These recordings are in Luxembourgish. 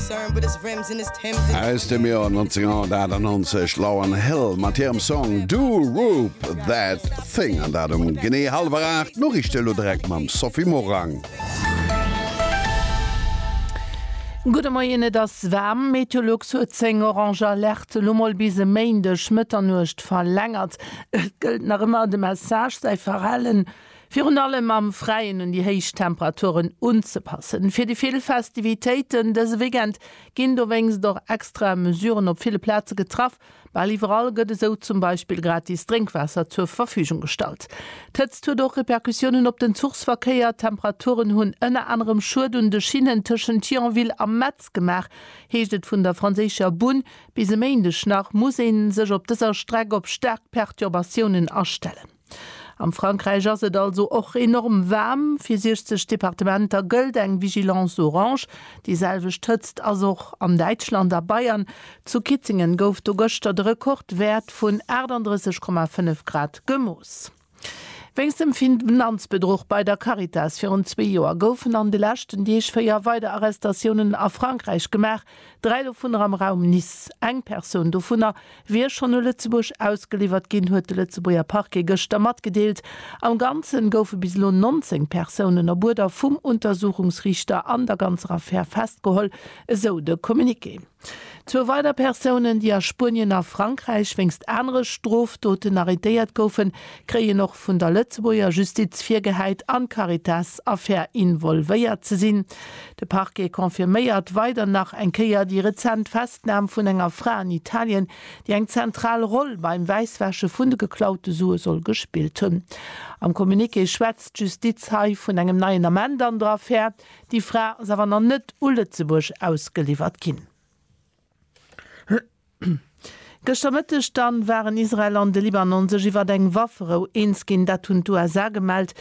Aus dem Joer 1998 Lauryn Hill mat hirem Song Do Roop That Thing an dat um genee hallwer 8. D'Noriichte elo direkt mam Sophie Morang. Gudde Moien, Et ass waarm. Meteolux huet seng orange Alerte elo mol bis e Méindeg Mëtternuecht verlängert. Et gëllt nach ëmmer de Message, säi Verhalen Virun allem am Fräien un déi héich Temperaturen unzepassen. Fir déi vill Festivitéiten dëse Weekend ginn dowéinst och extra Mesuren op ville Plaze getraff. Bal iwwerall gëtt esou zum Beispill gratis Drénkwaasser zur Verfügung gestallt. D'Hëtzt huet och Repercussiounen op den Zuchsverkéier. D'Temperaturen hunn ënner anerem Schued un de Schinnen tëschent Thionville a Metz gemaach, heescht et vun der franséischer Bunn. Bis e Méindeg nach muss ee sech op dëser Streck op staark Perturbatiounen astellen. Am Frankräich ass et also och enorm waarm. Fir 60 Departementer gëllt eng Vigilance orange. Déi selwecht Hëtzt ass och an Däitschland a Bayern. Zu Kitzingen gouf do gëschter de Rekordwäert vun 38,5 Grad gemooss. Wéinst dem Finanzbedruch bei der Caritas virun zwee Joer goufen an de leschten Deeg véier weider Arrestatiounen a Frankräich gemaach. Dräi dovunner am Raum Nice. Eng Persoun dovunner wier schonn u Lëtzebuerg ausgeliwwert ginn, huet de Lëtzebuerger Parquet gëschter matgedeelt. Am Ganze goufe bis elo 19 Persounen op Uerder vum Untersuchungsriichter an der ganzer Affär festgeholl, esou de Communiqué. Zwou weider Persounen, déi a Spuenien a Frankräich wéinst anere Strofdoten arrêtéiert goufen, kréien och vun der Lëtzebuerger Justiz virgehäit an d'Caritas-Affär involvéiert ze sinn. De Parquet confirméiert weider nach eng Kéier déi rezent Festnam vun enger Fra an Italien, déi eng zentral Roll beim Wäisswäsche vun de geklaute Sue soll gespillt hunn. Am Communiqué schwätzt d'Justiz hei vun engem neien Ament an der Affär. Déi Fra ass awer nach net u Lëtzebuerg ausgeliwwert ginn. Gëschter Mëtteg dann waren Israel an de Libanon sech iwwert eng Wafferou eens ginn. Dat hunn d'USA gemellt.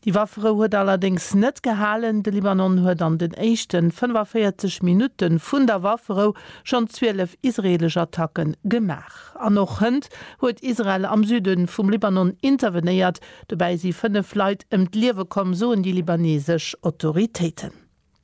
Déi Wafferou huet allerdéngs net gehalen. De Libanon huet an den éischten 45 Minutte vun der Wafferou schonn 12 israeelesch Attacke gemaach. An och hënt huet Israel am Süde vum Libanon intervenéiert. Dobäi si 5 Leit ëm d'Liewe komm, soen déi libaneesesch Autoritéiten.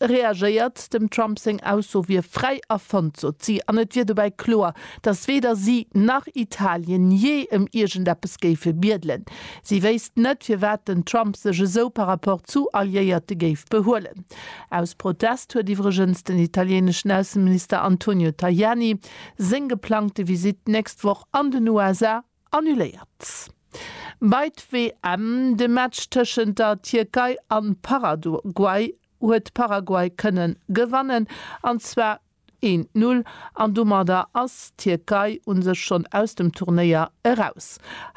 E reagéiert, dem Trump seng Ausso wier fräi erfonnt, sot si, an et wier dobäi kloer, datt weder si nach Italien jee ëm iergendeppes géife biedelen. Si wéisst net, firwat den Trump sech esou par rapport zu Alliéierte géif behuelen. Aus Protest huet iwwregens den italieneschen Ausseminister Antonio Tajani seng geplangte Visitt d'nächst Woch an den USA Annuléiert. Bei d'WM, de Match tëschent der Tierkei an Paraguay, huet Paraguay kënnen gewannen, an zwar een Null, an domadder ass d'Tierkei un sech schonn aus dem Turnéier eraus.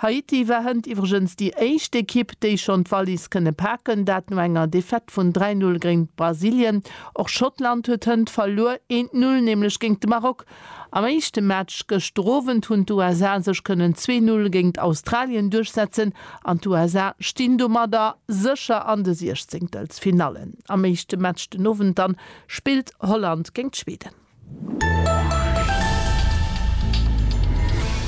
Haiti war hënt iwwregens déi éischt Ekipp, déi schonn d'Wallis kënne paken, dat no enger Defaite vun 3, 0 géint Brasilien. Och Schottland huet hënt verluer, een Null nämlech géint de Maroc. Am éischte Match gëschter Owend hunn d'USA sech kënnen 2-Null géingt Australien duerchsetzen an d'USA stinn domadder sécher an de Siechzehntelfinallen. Am éischte Match den Owend dann spillt Holland géingt Schweden.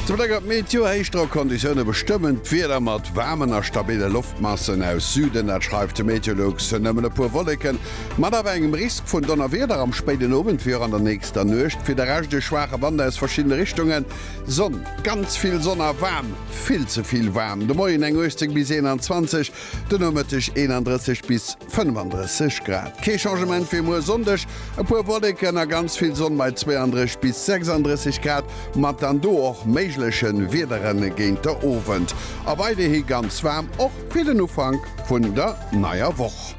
Zu Bléck op d'Meteo, Héichdrockconditioune bestëmmen d'Wieder mat waarmen a stabille Loftmassen aus Süden. Dat schreift de Meteolux, Nëmmen e puer Wolleken Mat awer engem Risk vun Donnerwieder am spéiden Owend wéi och an der nächster Nuecht. Fir de Rescht e schwaache Wand aus verschiddene Richtungen. Sonn, ganz vill Sonn a waarm, vill ze vill waarm. De Moien eng 18 bis 21, de Nomëtteg 31 bis 35 Grad. Kee Changement fir muer Sonndeg, e puer Wolleken a ganz vill Sonn bei 32 bis 36 Grad, mat dann do och méigleche Wiedere géint de Owend. A weiderhi ganz waarm, och fir den Ufank vun der neier Woch.